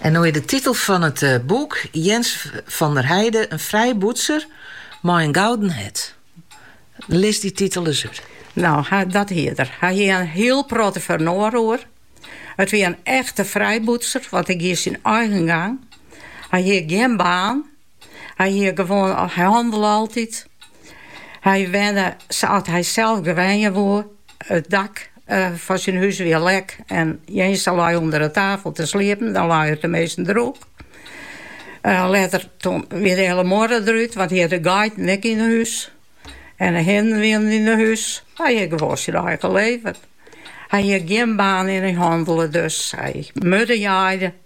En no is de titel fan it boek Jens van der Heide, in frijbûtser mei in gouden hert. Lis dy titel ris út. No, dat hie er. Hy hie in hiel protte foar in oar oer. It wie in echte frijbûtser, want hy gie syn eigen gang. Hy hie gjin baan. Hy hie gewoan, hy hannele altyd. Hy wenne sa't hy sels graach wenje woe. It dak fan syn hûs wie lek en Jeense lei ûnder 'e tafel te sliepen, dan lei er teminsten droech. Letter wie de hiele muorre derút, want hy hie de geiten ek yn 'e hûs en 'e hinnen wienen yn 'e hûs. Hy hie gewoan syn eigen leven. Hy hie gjin baan en hy hannele, dus hy murdejaaide.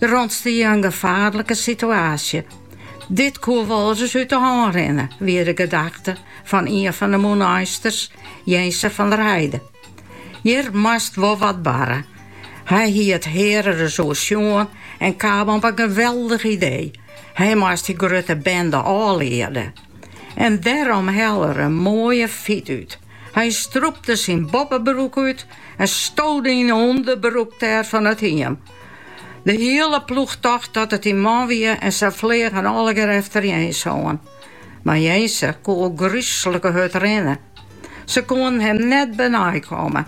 Der ûntstie in gefaarlike situaasje. Dit koe wolris út de hân rinne, wie de gedachte fan ien fan de Mûneinsters, Jeense van der Heide. Hjir moast wol wat barre. Hy hie it hear ris oersjoen en kaam op in geweldich idee, hy moast dy grutte bende ôfliede. En dêrom helle er in moaie fyt út. Hy strûpte syn boppebroek út en stode yn 'e ûnderbroek dêr fan it hiem. De hiele ploech tocht dat it in man wie en se fleagen allegear efter Jeens oan. Mar Jeense koe al grúslike hurd rinne. Se koenen him net benei komme.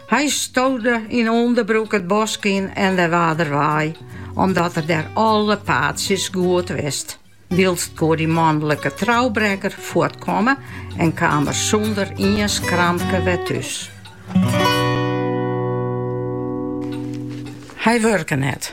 Hy stode yn ûnderbroek it bosk yn en dêr waard er wei, omdat er dêr alle paadsjes goed wist. Wylst koe dy manlike troubrekker fuortkomme en kaam er sûnder ien skramke wer thús. Hy wurke net.